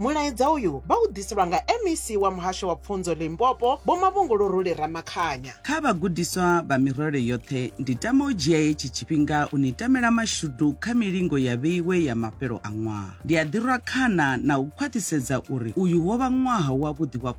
Mulaedza uyu vha u ḓiselwa nga MEC wa Muhasho wa Pfunzo Limpopo, Vho Mavhunguluruli Ramakhanya. Kha vhagudiswa vha mirole yoṱhe, ndi tama u dzhia hetshi tshifhinga u ni tamela mashudu kha milingo ya vheiwe ya mafhelo a ṅwaha. Ndi a ḓirwa khana na u khwaṱhisedza uri uyu wo vha ṅwaha wavhuḓi wa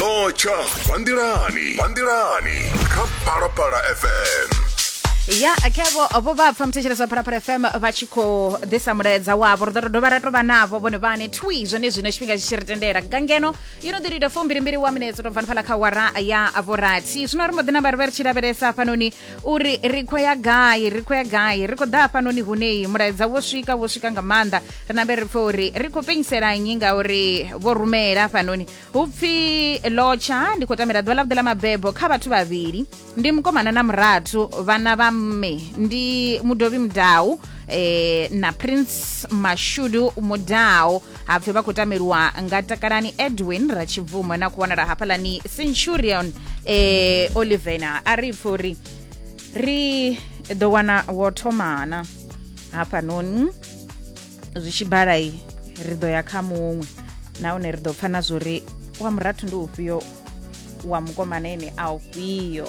no tsha vanḓilani vanḓilani kha phalaphala fm ya khevo vho vha pfa muthetshelesi wa phalaphala fm vha tshi khou ḓisa mulaedza wavho ri ḓo to dovha ra to vha navho vhone vhane twi zwone zwino tshifhinga tshi tshi ri tendela nga ngeno yo no ḓi lita fumbilimbili wa minetse to bvani phala kha wara ya vhorathi zwino ri mbo ḓi namba ri vha ri tshi lavhelesa hafhanoni uri ri khou ya gai ri khou ya gai ri khou ḓa hafhanoni hunei mulaedza wo swika wo swika nga maanḓa ri nambe ri pfe uri ri khou penyisela nnyi ngauri vho rumela hafhanoni hu pfi lotsha ndi khou tamela ḓuvha ḽavhuḓi ḽa mabebo kha vhathu vhavhili ndi mukomana na murathu vhana vha mme ndi mudovhi mudau eh, na prince mashudu mudau hapfi vha khou tameliwa nga takalani edwin ratshibvumo na ku wanala hafhaḽani centurion eh, olivena a ri pfi uri ri ḓo wana wo thomana hafhanoni zwi tshi balai ri ḓo ya kha muṅwe nahone ri ḓo pfa na zwori wa murathu ndi ufhio wa mukomana ene a ufhio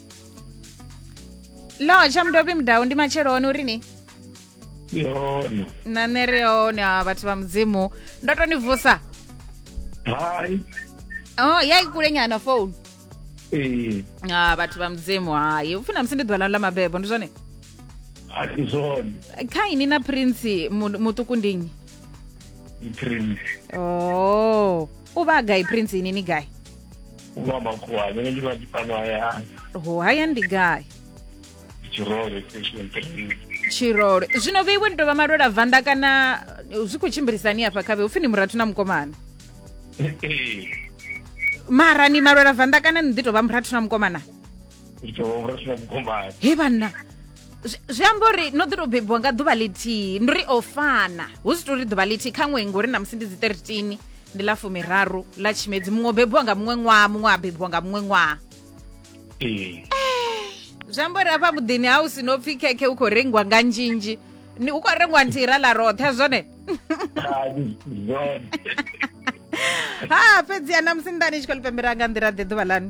lo tsha mudobi mudau ndi matshelo one uri ni yona na nṋe ri hone a vhathu vha mudzimu ndo to ni vusa hai oh ya ikule nyana phone ee a vhathu vha mudzimu hayi upfi na musi ndi ḓuvha lanu ḽa mabebo ndi zwone a si zwone kha ini na prince mu- muṱuku ndi nnyi prince oh u vha gai prince ini ni gai Wa makhuwa, nṋe ndi vha ndi fhano hayani. Ho hayani ndi gai? Tshirole station three. Tshirole. Zwino vhe iwe ni tou vha malwela vanda kana zwi khou tshimbilisani hafha khavhe upfi ni murathu na mukomana? Ee. Mara ni malwela vanda kana ni ḓi tou vha murathu na mukomana? he vhanna zwi amba uri no ḓi tou bebiwa nga ḓuvha ḽithihi ndi ri o fana hu si tori ḓuvha ḽithihi kha ṅwei ngori na musi ndi dzi 13 ndi ḽa fumiraru ḽa tshimedzi muṅwe o bebiwa nga muṅwe ṅwaha muṅwe a bebiwa nga muṅwe ṅwaha eh, zwi amba uri afha muḓini ha u si no pfhi khekhe u khou rengiwa nga nzhinzhi u khou rengiwa nthihi ra ḽa roṱhe zwone ha fhedzi ya na musi nḓani tshi khou ḽi pembera nga nḓila ḓe ḓuvha lani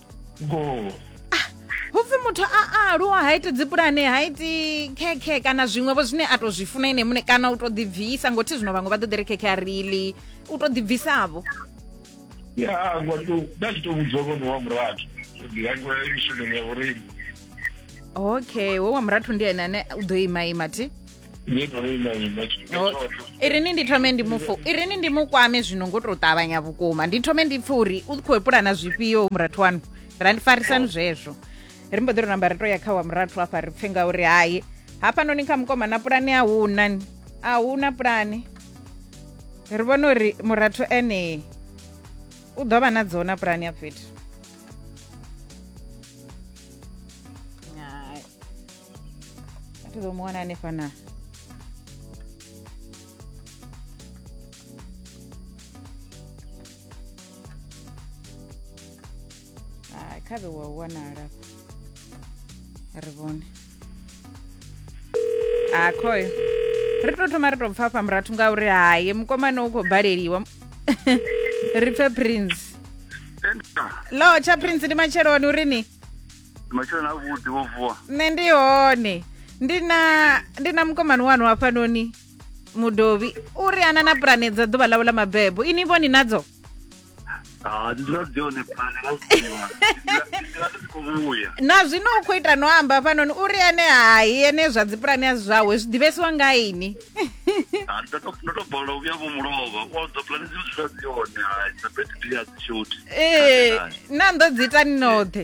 hupfi muthu a a aluwa ha iti dzipulane ha iti khekhe kana zwiṅwevho zwine a to zwi funa ene muṋe kana u to ḓibvisa ngothi zwino vhaṅwe vha ḓo ḓi ri khekhe a rili u to ḓibvisavho ya ngwa to nda tshi to vhudza vhone wa murathu ndi yangwe mishumo ya vhoreni okay we wa murathu ndi ene ane u ḓo ima ima thi irini ndi thome ndi mufu irini ndi mukwame zwino ngo to ṱavhanya vhukuma ndi thome ndi pfe uri u khou pulana zwifhio murathu wanu ra ndi farisani zwezwo ri mbo ḓi ri namba ri to ya kha wa murathu afha ri pfe ngauri hayi hafhanoni kha mukoma na pulani a huna ni a huna pulani ri vhona uri murathu ene u ḓo vha na dzona pulani ya fhethu tizomwana anefana Ah, khabe wa wanala ri vhone a khoyo ri to thoma ri to pfa fha murathu ngauri haye mukomana u khou baleliwa ri pfe prince lo tsha prince ndi matsheloni uri ni matsheloni avhuḓi wo vuwa nṋe ndi hone ndi na ndi na mukomani wanu hafhanoni mudovhi u ri ana na pulane dza ḓuvha ḽawe ḽa mabebo ini vho ni nadzo Ah, dzi dzula dzi hone phane nga zwiwa ndila dzi khou vhuya na zwino u khou ita no amba hafhanoni u ri ene hai ene zwa dzipulane a si zwawe zwi ḓivhesiwa nga ini Ah, ndo to- ndo to bola u vhuya vho mulova u auza pulani dzi dzula dzi hone hai dza bete ndi a dzi shoti ee na ndo dzi ita ni noṱhe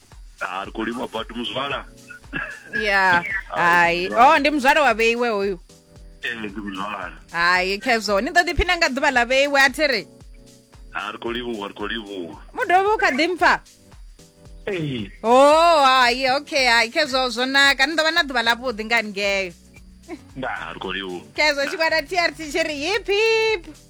ah ri khou livhuwa badi muzwala ya hai oh ndi muzwala wa vheiwe hoyu ee ndi muzwala hai khezwo ni ḓo ḓiphina nga ḓuvha ḽa vheiwe a thi ri ah ri khou livhuwa ri khou livhuwa mu dovhe u kha ḓi mpfa ee o hai okay hai khezwo zwo naka ni ḓo vha na ḓuvha ḽavhuḓi nga haningeo ndaa ri khou livhuwa khezwo tshigwada trt tshi ri hip hip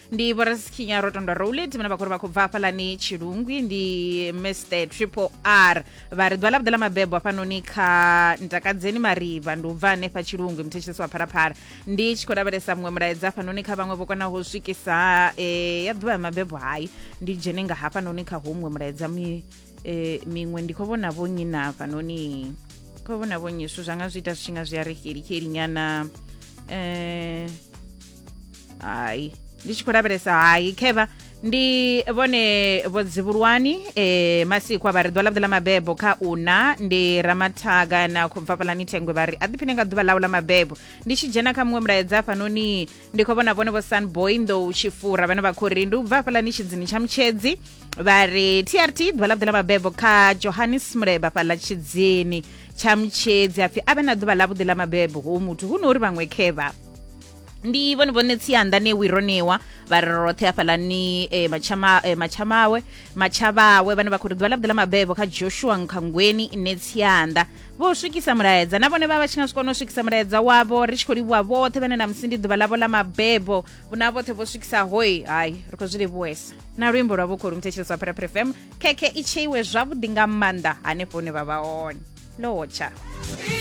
ndi vhorasikhinya rotondwa rowlet vhane vha khou ri vha khou bva hafhalani tshilungwi ndi mr triple r vha ri ḓuvha ḽa vhuḓe ḽa mabebo hafhanoni kha ntakadzeni mariva ndi u bva hanefha tshilungwi muthetshelesi wa phalaphala ndi tshi khou lavhelesa muṅwe mulaedza hafhanoni kha vhaṅwe vho konaho u swikisa eh, ya ḓuvha ya mabebo hayi ndi dzhene nga hafhanoni kha huṅwe mulaedza mi- eh, miṅwe ndi khou vhona vho nnyi na hafhanoni khou vhona vho nnyi zwithu zwa nga zwi ita zwi tshi nga zwi a ri xelikeli nyana eh, hayi ndi tshi khou lavhelesa hayi kheva ndi vhone vho dzivhulwani e, masikwa vha ri ḓuvha ḽavhuḓi ḽa mabebo kha una ndi ramathaga na khou bva fhaḽani thengwe vha ri a ḓiphine nga ḓuvha ḽau ḽa mabebo ndi tshi dzhena kha muṅwe mulaedza hafhanoni ndi khou vhona vhone vho sunboy nḓou tshifura vhane vha khou ri ndi u bva fhaḽani tshidzini tsha mutshedzi vha ri trt ḓuvha ḽavhuḓi ḽa mabebo kha johannes muleba fhaḽa tshidzini tsha mutshedzi apfi a vhe na ḓuvha ḽavhuḓi ḽa mabebo hu muthu hu no uri vhaṅwe khevha ndi vhone vhone tsianda ne wironiwa vha ri roṱhe hafhalani eh, matshama- eh, matshamawe matshavhawe vhane vha khou ri ḓuvha ḽa vhuḓi ḽa mabebo kha joshua nkhangweni ne tsianda vho swikisa mulaedza na vhone vha vha tshi nga swikona u swikisa mulaedza wavho ri tshi khou livhuwa vhoṱhe vhane na musi ndi ḓuvha ḽavho ḽa mabebo vhuna vhoṱhe vho swikisa hoi hayi ri khou zwi livhuwesa na luimbo lwa vhukho lu mthetshelesi wa pheraphere fm khekhe i tsheiwe zwavhuḓi nga maanḓa hanefho hune vha vha hone lotsha